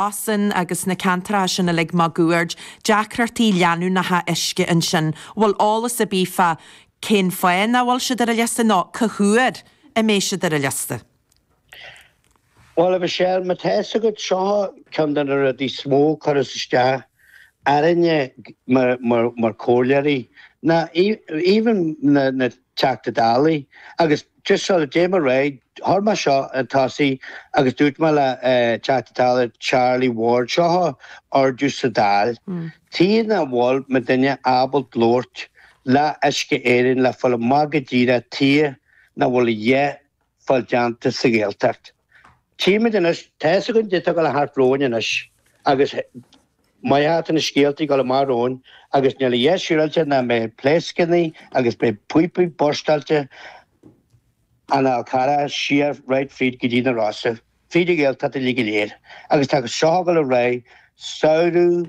Oisin agus na ceantracha sin uilig máguaird, deacrachtaí leanúnacha uisce ansin. Bhfuil eolas ar bith fá cén fáth nach bhfuil siad ar an liosta nó cá huair a mbeidh siad ar an liosta? Bhuel, a Mhichelle, mar tá fhios agat, seo ceann de na rudaí is mó a chuireas isteach orainne mar comhairleoirí ná even na Teachta Dálaí, agus just sort of déan mo raghaidh, chuir mé seo chun tosaigh agus dúirt mé le Teachta Dála Charlie Ward, seo a ardú sa Dáil, tuige nach bhfuil muidinne ábalta labhairt le Uisce Éireann le fáil amach go díreach tuige nach bhfuil a dhath ag fáil déanta sa Ghaeltacht. Tchímid anois, tá's againn goidé atá ag dul thart romhainn anois agus mar atá na scéaltaí ag dul amach romhainn agus níl a dhath níos siúráilte ná mbeidh pléascannaí agus beidh píopaí burstáilte ón Fhál Carrach siar right fríd go dtí na Rosa, fríd an Ghaeltacht uilig go léir agus tá seo ag dul ar aghaidh samhradh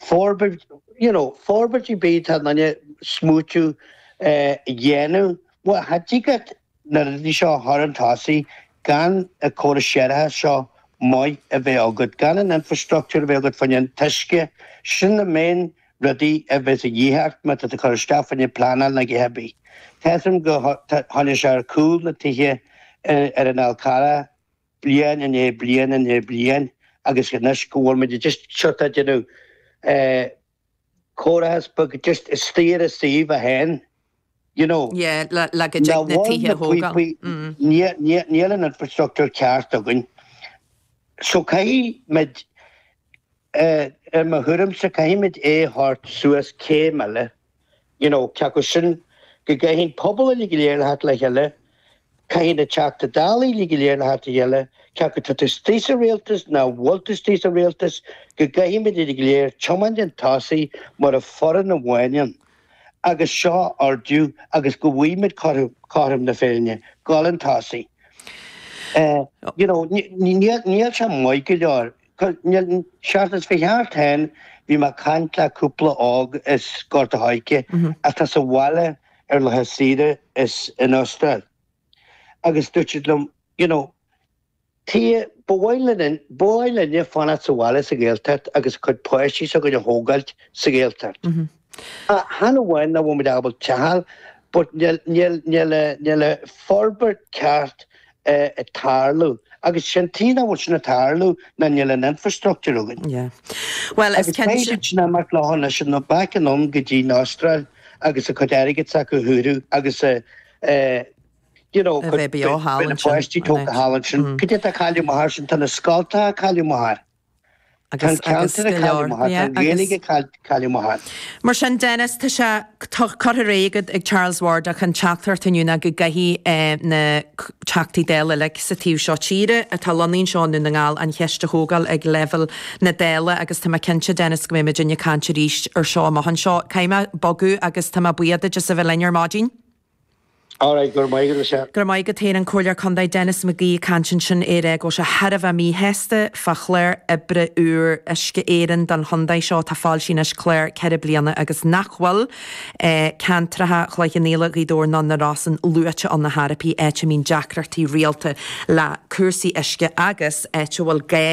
Forbairt, you know, forbairt ar bith atá duine ag smaoitiú a dhéanamh. Bhuel, cha dtig leat na rudaí seo a chur chun tosaigh gan an córas séarachais seo maith a bheith agat, gan an infreastruchtúr a bheith agat fá choinne an t-uisce, sin na main rudaí a bheas a dhíth ort má tá tú ag cur isteach fá choinne pleanáil nó a dhath ar bith. Tchím gur choinnigh sé ar gcúl na tithe ar an Fhál Carrach. bliain i ndiaidh bliain i ndiaidh bliain agus anois go bhfuil muid just sort of ag déanamh córas beag just isteach ar an suíomh é féin you know yeah le go dtig na tithe a thógáil níl an infrastructúr ceart againn so caithfidh muid I mo thuairimse, caithfimid é a thabhairt suas céim eile, you know, cé acu sin go gcaithfidh pobal uile go léir a theacht le chéile, caithfidh na Teachta Dála uile go léir a theacht le chéile, cé acu tá tú istigh sa rialtas nó nach bhfuil tú istigh sa rialtas, go gcaithfimid uile go léir tiomáint chun tosaigh mar fhoireann amháin ann agus seo a ardú agus go bhfuighimid cothrom na féinne, ag dul chun tosaigh. You know, níl sé maith go leor. An tseachtain seo a chuaigh thart, bhí mé ag caint le cúpla óg as Gort a' Choirce atá sa bhaile ar laetha saoire as an Astráil agus dúirt siad liom, you know, Tchí, ba mhaith linne, ba mhaith linne fanacht sa bhaile sa Ghaeltacht agus a cuid páistí s'againne a thógáilt sa Ghaeltacht. Chan amháin nach bhfuil muid ábalta teach a fháil but níl forbairt ceart ag tarlú agus sin tuige nach bhfuil sin ag tarlú ná níl an infrastructure againn. Yeah. Well is cinnte. Agus beidh siad sin ag imeacht leo anois back anonn go dtí'n Astráil agus a cuid airgid s'acu a shaothrú agus a you know a bheith beo thall ansin. Beidh na páistí tógtha thall ansin. Cad é tá ag cailleadh amach air sin, tá na scoltacha ag cailleadh amach air. Tá an ceantar ag cailleadh amach air, tá an Ghaeilge ag cailleadh amach air. Mar sin, Denis, tá sé curtha ar aghaidh agat ag Charles Ward ach an teachtaireacht inniu ná go gcaithfidh na Teachtaí Dála uilig sa taobh seo tíre atá lonnaithe anseo i nDún na nGall an cheist a thógáil ag leibhéal na Dála agus tá mé cinnte, Denis, go mbeidh muid ag caint arís air seo amach anseo. Caithfidh mé bogadh agus tá mé buíoch duit as a bheith linn ar maidin. All right, go raibh maith agat, a Sher. Go raibh maith agat féin, an Comhairleoir Contae Denis McGee ag caint ansin ag rá go bhfuil sé thar a bheith míshásta fá chlár oibre úr Uisce Éireann don chontae seo atá foilsithe anois clár ceithre bliana agus nach bhfuil ceantracha Chloich Cheann Fhaola, Ghaoth Dobhair ná na Rosann luaite ann ar chor ar bith, áit a mbíonn deacrachtaí rialta le cúrsaí uisce agus áit a bhfuil gá,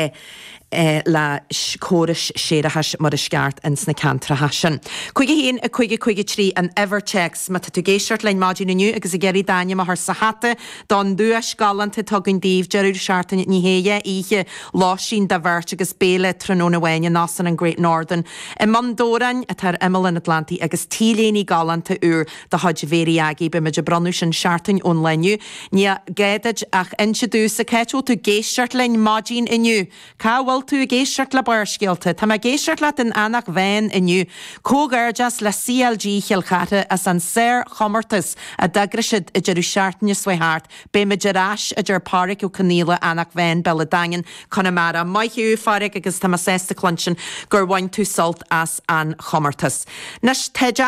le córais séarachais mar is ceart ins na ceantracha sin. 51553 an uimhir théacs. Má tá tú ag éisteacht linn maidin inniu agus ag iarraidh d'ainm a chur sa hata don duais galánta atá againn daoibh, deireadh seachtaine, dhá oíche lóistín do bheirt agus béile tráthnóna amháin in Óstán an Great Northern i mBun Dobhráin atá ar imeall an Atlantaigh agus t-léine galánta úr de chuid Mhary Aggie, beidh muid ag bronnadh sin seachtain ón lá inniu. Ní gá duit ach inse domhsa cá háit a bhfuil tú ag éisteacht linn maidin inniu. Cá bhfuil tú ag éisteacht le Barrscéalta? Tá mé ag éisteacht leat in Eanach Mheáin inniu. Comhghairdeas le CLG Chill Chartha as an sárchomórtas a d'eagraigh siad an deireadh seachtaine seo a chuaigh thart. Beidh muid ar ais a deir Páraic Ó Conaola, Eanach Mheáin, Béal an Daingin, Conamara. Maith thú a Pháraic agus tá mé sásta cluinstin gur bhain tú sult as an chomórtas. Anois táid á.